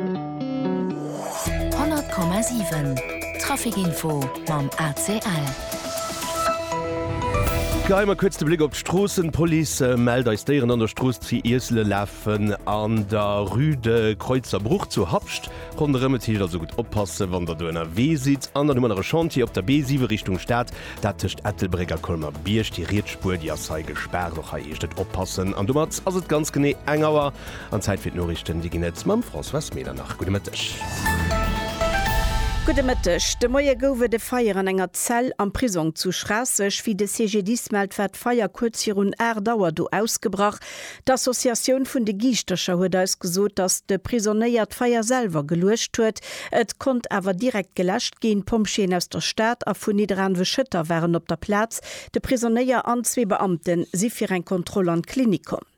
100,7 Trafic Info mam ACL. Geheien mer kuerz de Bléck op d'Stroossen. D'Police mellt eis Déieren an der Strooss zu Iessele lafen an der Rue de Kreuzer Bruch zu Habscht ronderëm. Et heescht also gutt oppassen, wann der do ënnerwee sidd. An dann hu mer nach e Chantier op der B7 Richtung Stad, dat tëscht Ettelbréck a Colmer-Bierg. Déi riets Spuer, déi ass hei gespaart. Och hei heescht et oppassen. An domat ass et ganz genee eng Auer. An Zäit fir d'Noriichten, déi ginn et mam Françoise Medernach. Gudde Mëtteg. Gudde Mëtteg. De Moie gouf et e Feier an enger Zell am Prisong zu Schraasseg. Wéi de CGDIS mellt, war d'Feier kuerz virun 8 Auer do ausgebrach. D'Associatioun vun de Giischtercher huet eis gesot, datt de Prisonéier d'Feier selwer geluecht huet. Et konnt awer direkt geläscht ginn. D'Pompjeeën aus der Stad a vun Nidderaanwe-Schëtter waren op der Plaz. De Prisonéier an zwee Beamte si fir eng Kontroll an d'Klinik komm.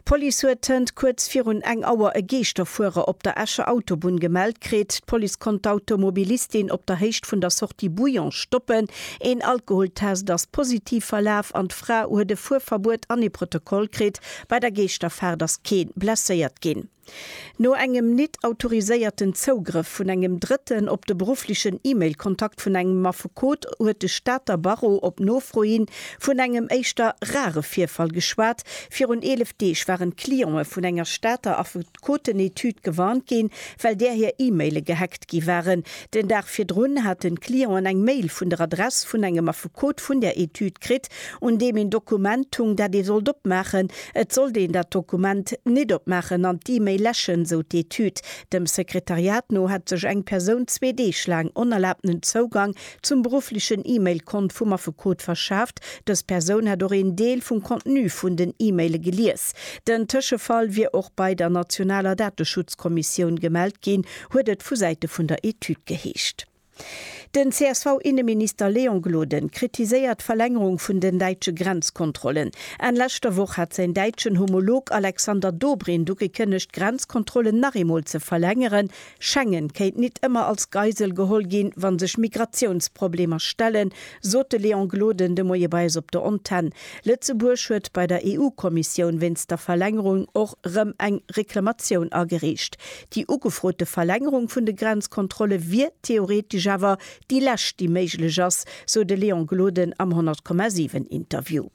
D'Police huet hënt kuerz virun eng Auer e Geeschterfuerer op der Escher Autobunn gemellt kritt. D'Police konnt d'Automobilistin op der Héicht vun der Sortie Bouillon stoppen. Een Alkoholtest ass positiv verlaf an d'Fra huet e Fuerverbuet an ee Protokoll kritt. Bei der Geeschterfaart ass kee blesséiert ginn. No engem nit autoriséierten Zougrëff vun engem Drëtten op de berufflechen E-Mail-Kontakt vun engem Affekot huet de Stater Barreau op Nofro hi vun engem éischter rare Virfall geschwat. Virun 11 Deeg waren d'Clientë vun enger Stater Affekotenetüd gewarnt ginn, well där hir E-Maile gehackt gi waren. Den Dag virdrun haten d'Clienten eng Mail vun der Adress vun engem Affekot vun där Etüd kritt, un deem een Dokument hung, dat ee sollt opmaachen. Et sollt een dat Dokument nit opmaachen an d'E-Mail läschen, sou d'Etüd. Dem Sekretariat no hätt sech eng Persoun zwee Deeg laang onerlaabtenen Zougang zum berufflechen E-Mail-Kont vum Affekot verschaaft. Dës Persoun hätt och een Deel vum Contenu vun den E-Maile gelies. Den Tëschefall wier och bei der nationaler Dateschutzkommissioun gemellt ginn, huet et vu Säite vun der Etüd geheescht. Den CSV-Inneminister Léon Gloden kritiséiert d'Verlängerung vun den däitsche Grenzkontrollen. Enn leschter Woch hat säin däitschen Homolog Alexander Dobrindt ugekënnegt, d'Grenzkontrollen nach eemol ze verlängeren. Schengen kéint nit ëmmer als Geisel geholl ginn, wa sech Migratiounsproblemer stellen, sot de Léon Gloden de Moie bei eis op der Antenn. Lëtzebuerg huet bei der EU-Kommissioun wéinst der Verlängerung och rëm eng Reklamatioun agereecht. Déi ugefrote Verlängerung vun de Grenzkontrolle wier theoretesch awer déi lescht, déi méiglech ass, sou de Léon Gloden am 100,7 Interview.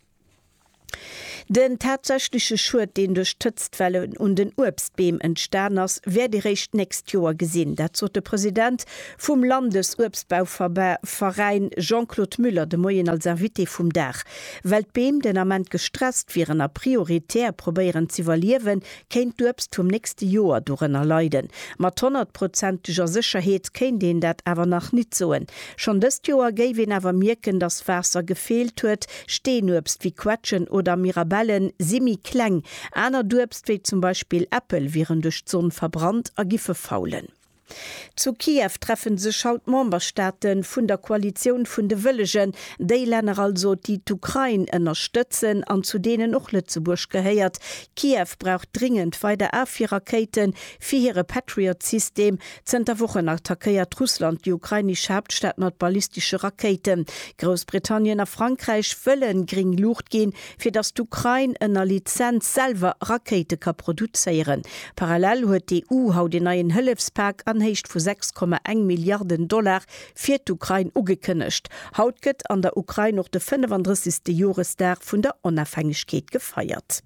Den tatsächleche Schued, deen duerch d'Hëtztwelle un den Uebstbeem entstan ass, wäert ee réischt d'nächst Joer gesinn. Dat sot de President vum Landesuebstbauveräin Jean-Claude Muller de Moien als Invité vum Dag. Well d'Beem den Ament gestresst wieren a prioritär probéieren z'iwwerliewen, kéint d'Uebst vum nächste Joer dorënner leiden. Mat honnertprozenteger Sécherheet kéint een dat awer nach nit soen. Schonn dëst Joer géif een awer mierken, dass Waasser gefeelt huet. Steenuebst wéi Quetschen oder Mirabellen si méi kleng. Anert Uebst, wéi zum Beispill Äppel, wieren duerch d'Sonn verbrannt a giffe faulen. Zu Kiew treffen sech haut d'Memberstaate vun der Koalitioun vun de Wëllegen, déi Länner also, déi d'Ukrain ënnerstëtzen an zu deenen och Lëtzebuerg gehéiert. Kiew brauch dringend weider Afwierrakéiten fir hire Patriot-System. Zënter Wochen attackéiert Russland déi ukrainesch Haaptstad mat ballistesche Rakéiten. Groussbritannien a Frankräich wëlle gréng Luucht ginn, fir datt d'Ukrain ënner Lizenz selwer Rakéite ka produzéieren. Parallel huet d'EU haut een neien Hëllefspak an Héicht vu 6,1 Milliarden Dollar fir d'Ukrain ugekënnegt. Haut gëtt an der Ukrain och de 35. Joresdag vun der Onafhängegkeet gefeiert.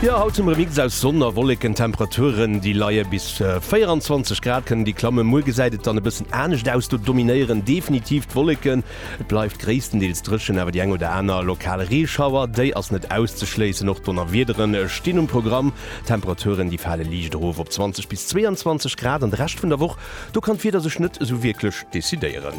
Jo haut zum Remix aus Sonn a Wolleken, Temperaturen déi leie bis. 24 Grad kënnen déi klammen. Muer gesäit et dann e bëssen anescht aus, do dominéieren definitiv d'Wolleken. Et bleift gréisstendeels dréchen, awer déi eng oder aner lokal Reeschauer, déi ass net auszeschléissen. Och Donnerwiedere stinn um Programm. D'Temperaturen, déi fale liicht erof op 20 bis 22 Grad. An de Rescht vun der Woch, do kann d'Wieder sech net esou wierklech decidéieren.